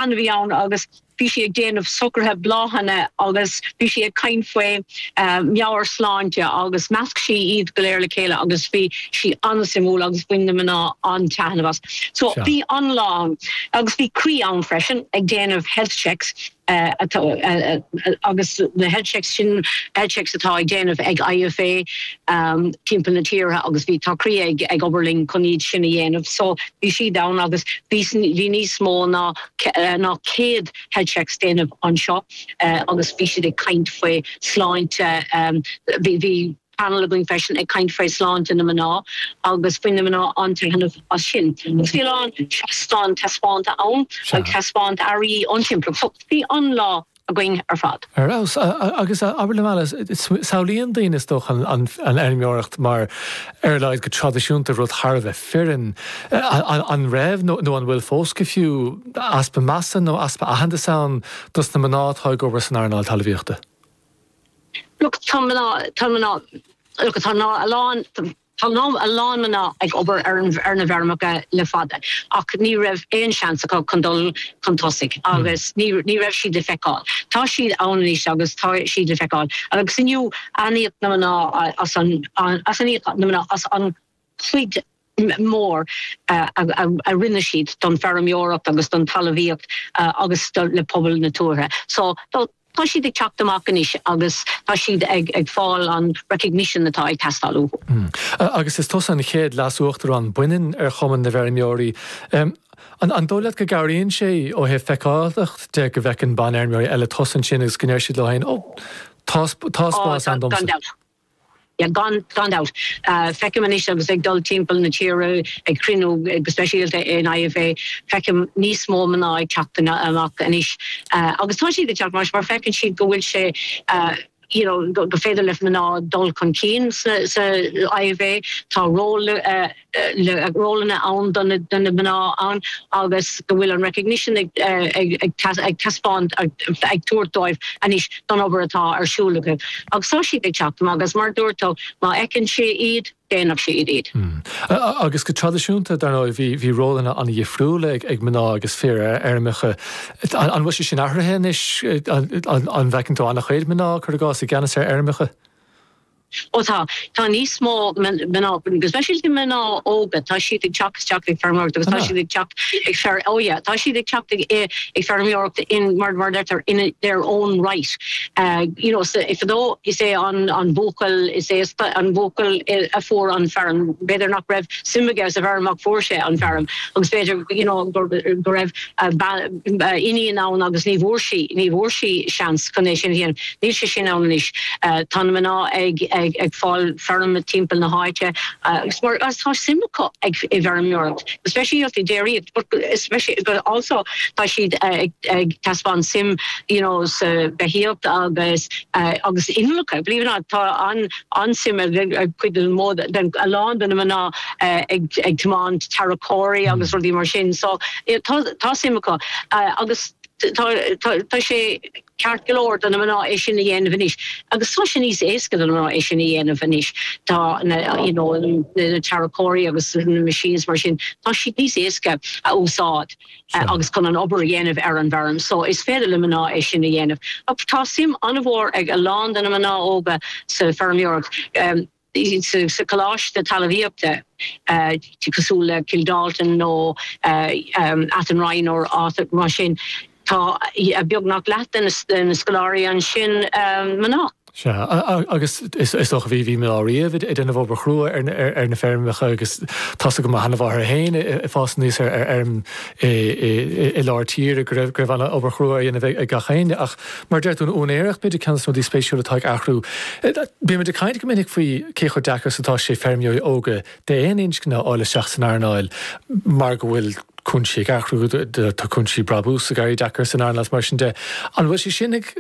bean a bhí ann agus bhí sí ag déanamh socraithe bláthanna agus bhí sí ag caint faoi meabhairshláinte agus measc sí iad go léir le chéile agus bhí sí an-suimiúil agus bhain na mná an-taithneamh as. So bhí an-lá ann agus bhí Croí ann freisin ag déanamh health checks eh, agus na health checks sin health checks atá ag déanamh ag IFA timpeall na tíortha agus bhí tá Croí ag ag obair linn chun iad sin a dhéanamh so bhí siad ann agus bhí bhí níos mó ná ná céad health checks déanamh anseo agus bhí siad ag caint faoi sláinte bhí bhí panel againn freisin ag caint faoi sláinte na mná agus bhain na mná an-taitneamh as sin agus bhí a lán seastán taispeánta ann ag taispeáint earraí ón timpeallacht so bhí an-lá againn ar fad. Ar fheabhas. Agus abair liom Alice, samhlaíonn daoine is dócha an fheirmeoireacht mar, ar a laghad go traidisiúnta, rud thar a bheith fireann. An raibh, nó an bhfuil fós fiú, easpa measa nó easpa aitheantais ann dos na mná atá ag obair san earnáil talmhaíochta? Look, tá mná, tá mná, look, tá mná, a lán, Tá a lán mná ag obair ar na bhfeirmeacha le fada ach ní raibh aon seans acu chun dul chun tosaigh agus ní raibh siad le feiceáil. Tá siad ann anois agus tá siad le feiceáil agus inniu aithníodh na mná as an chuid mhór a rinne siad don feirmeoireacht agus don talmhaíocht agus le pobal na tuaithe. Tá siad ag teacht amach anois agus tá siad ag fáil an recognition atá ag teastáil uathu. Agus is tusa an chéad Leas-Uachtarán baineann ar Chumann na bhFeirmeoirí. An dóigh leat go gcabhraíonn sé ó thaobh feiceálacht de go bhfeiceann banfheirmeoirí eile tusa ansin agus go ndeir siad leo féin, 'Ó, tá spás ann domsa'? Yeah, gan gan dabht. Feicim anois agus ag dul timpeall na tíre ag cruinniú go speisialta in IFA, feicim níos mó mná ag teacht amach anois agus tá siad ag teacht mar mar feiceann siad go bhfuil sé you know go féidir le mná dul chun cinn sa IFA. Tá ról le rólanna ann do na mná ann agus go bhfuil an recognition ag taispeáint ag tabhairt dóibh anois don obair atá ar siúl acu agus tá siad ag teacht amach agus mar a dúirt tú má fheiceann sé iad déanfaidh sé iad iad. Agus go traidisiúnta dar ndóigh bhí rólanna an-dhifriúla ag mná agus fir ar fheirmeacha. An bhfuil sé sin athraithe anois? An bhfeiceann tú an-chuid mná cuir i gcás i gceannas ar fheirmeacha? Ó tá. Tá níos mó mná, go speisialta mná óga, tá siad ag teacht isteach ag feirmeoireacht agus tá siad ag teacht ag feir, ó yeah, tá siad ag teacht ag ag feirmeoireacht in mar mar deirtear in their own right. You know sa fadó is é an an buachaill is é an buachaill a fuair an feirm, b'fhéidir nach raibh suim aige sa bhfeirm ach fuair sé an feirm agus b'fhéidir you know go raibh Ba iníon ann agus ní bhfuair sí, ní bhfuair sí seans chun é sin a dhéanamh. Níl sé sin ann anois. Tá na mná ag, ag, ag fáil feirme timpeall na háite agus mar, agus tá suim acu ag, i bhfeirmeoireacht, go speisialta déiríocht but go speisialta, but also tá siad ag, ag taispeáint suim you know sa beithíocht agus, agus innealra, believe it or not, tá an, an-suim ag cuid de, de, a lán de na mná ag ag tiomáint tarracóirí agus rudaí mar sin so yeah tá tá suim acu agus tá tá tá sé ceart go leor do na mná é sin a dhéanamh anois agus tá sé níos éasca do na mná é sin a dhéanamh anois. Tá na you know na tarracóirí agus na machines mar sin tá siad níos éasca a úsáid. agus chun an obair a dhéanamh ar an bhfeirm so is féidir le mná é sin a dhéanamh. Tá suim ana-mhór ag a lán de na mná óga sa feirmeoireacht, sa choláiste talamhaíochta cosúil le Cill Dalton nó Athenry nó áit mar sin. Tá beagnach leath de na scoláirí ansin mná. Sea. Agus is dócha bhí mná riamh ag déanamh obair chrua ar na feirmeacha agus tá's agam mo sheanmháthair féin ag fás aníos ar fheirm i lár tíre go raibh ana obair chrua á dhéanamh ag gach éinne. Ach mar a deir tú an úinéireacht b'fhéidir ceann de na rudaí spéisiúla atá ag athrú. Bíonn muid ag caint go minic faoi cé chomh deacair is atá sé feirmeoirí óga d'aon inscne a fháil isteach san earnáil mar go bhfuil cúinsí ag athrú, tá cúinsí brabúis ag éirí deacra san earnáil is mar sin de. An bhfuil sé sin ag.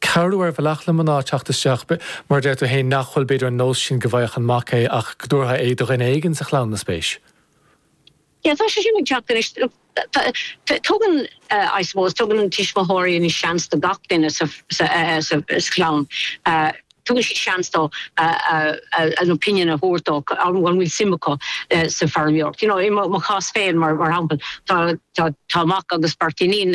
cabhrú ar bhealach le mná teacht isteach, mar a deir tú fhéin nach bhfuil b'fhéidir an nós sin go bhfaigheadh an mac é ach go dtabharfaí é do dhuine éigin sa chlann le spéis. Yeah, tá sé sin ag teacht anois. Tugann, I suppose, tugann tuismitheoirí anois seans do gach duine sa chlann, tugann siad seans dó an opinion a thabhairt dó, an bhfuil suim acu sa feirmeoireacht. You know, i mo chás féin mar shampla, tá mac agus beirt iníon,